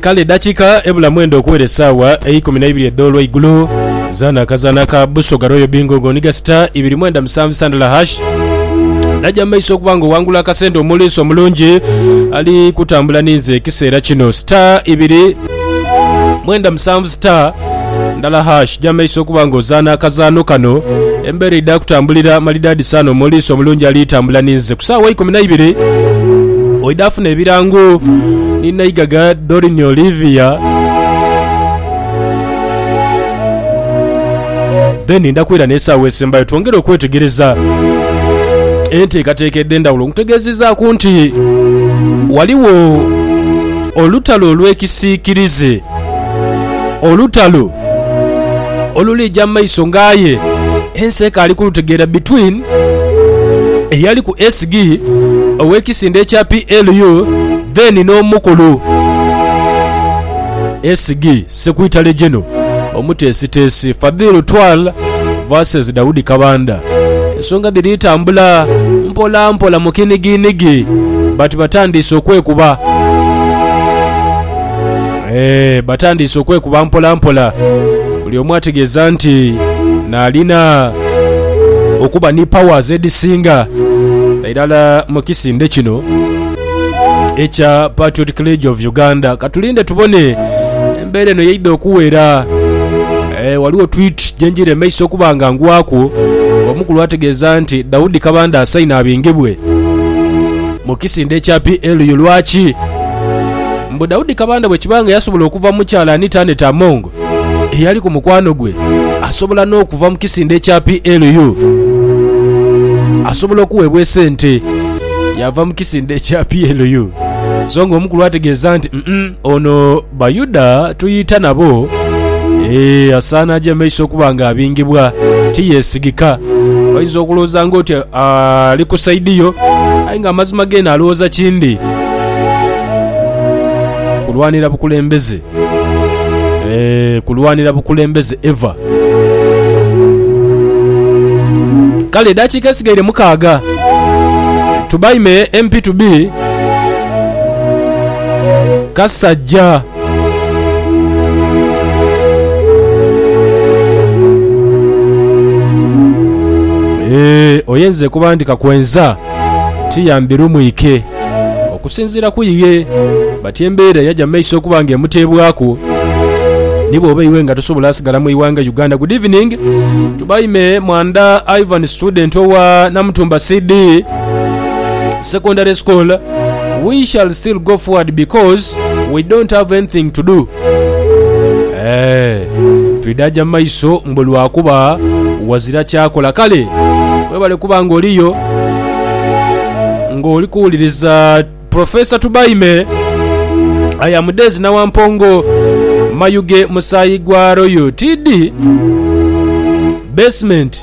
Kale edhakiika ebula mwenda okuwera essaawa eikumi na ibiri edh'olweigulo, zaana akazaana ka Busoga Royal Bingo nga oniga sita ibiri mwenda musanvu sandala hash naja mu maiso okuba nga owangula akasente omuliisi omulungi ali kutambula ninze ekiseera kino. Sita ibiri mwenda musanvu star ndala hash jamaiso okuba nga ozaana akazaano kano embeera eidha kutambulira malidaadi saana omuliisi omulungi ali tambula ninze ku saawa ikumi naibiri oidha funa ebirango ni naigaga dorin olivia then ndakwira n'esaawa esembayo twongere okwetegereza enteekateeka edh'endawulo nkutegeezizaaku nti waliwo Olutalo olw'ekisiikirize. Olutalo oluliija mu maiso nga aye ensi ekaali kulutegeera between eyali ku SG ow'ekisinde ekya PLU then n'omukulu SG Secretary General, Omuteesiteesi, Fadhil Twal vs Daudi Kabanda. Ensonga dhiri tambula mpolampola mu kinigiinigi but batandiise okwekuba eeh batandiise okwekuba mpolampola buli omu ategeeza nti naalina okuba ni powers edhisinga irala mu kisinde kino. ekya Patriotic League of Uganda. Katulinde tubone embeera eno yeidha okuwera. E, waliwo tweet gyenjira emaiso okuba nga ngwaku omukulu ategeeza nti Daudi Kabanda asaine abingibwe mu kisinde ekya PLU lwaki? Mbu Daudi Kabanda bwekiba nga yasobola okuva mu kyalani Taneta Among eyali ku mukwano gwe asobola n'okuva mu kisinde ekya PLU. Asobola okuweebwa esente yaava mu kisinde ekya PLU. So nga omukulu ategeeza nti "Mm-mm, ono Bayuda tuyita nabo Eh, asaana aje maiso okuba nga abingibwa tiyesigika oyinza okulowooza nga oti ah, ali ku saidi yo aye nga amazima geena alowooza kindi kulwanira bukulembeze Eeh kulwanira bukulembeze ever. Kale edakika esigaire mukaaga tubaime MP to be Kasajja. Eeh oye nze kuba ndi kakwenza tiyambi lumwike. Okusinziira ku iye, bati embeera yaja mu maiso okuba nga emuteebwaku ni bw'oba iwe nga tosobola sigala mu ighanga Uganda. Good evening to by me Mwandha Ivan student owa Namutumba CD secondary school, we shall still go forward because we don't have anything to do. Eeh, twidha aja mu maiso mbu lwakuba wazira kyakola. Kale webale kuba nga oliyo nga oli kuwuliriza Professor Tubaime aya mudezi na wampongo mayuge musayi gwa royal td basement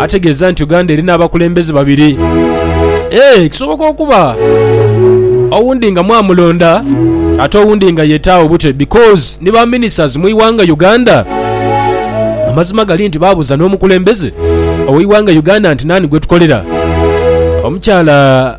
ategeeza nti Uganda erina abakulembeze babiri. Eeh, kisoboka okuba owundi nga mwamulonda ate owundi nga yetaawo bute because ni ba ministers mu iwanga Uganda. Amazima gali nti baabuza n'omukulembeze oweiwanga Uganda nti naani gwetukolera. Omukyala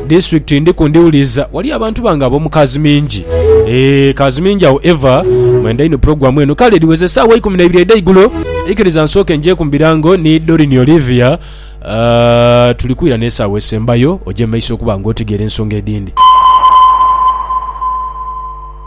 District ndiku ndiwuliza wali abantu bange abomu kazimingi eeh kazimingi awo ever mwenda inho program eno kale ediweze esawa ikumi neibiri edaigulo ikiriza nsooke njeku mubirango ni Doreen Olivia aah tulikwira nesawa esembayo oje mumaiso okuba nga otegeera ensonga edindi.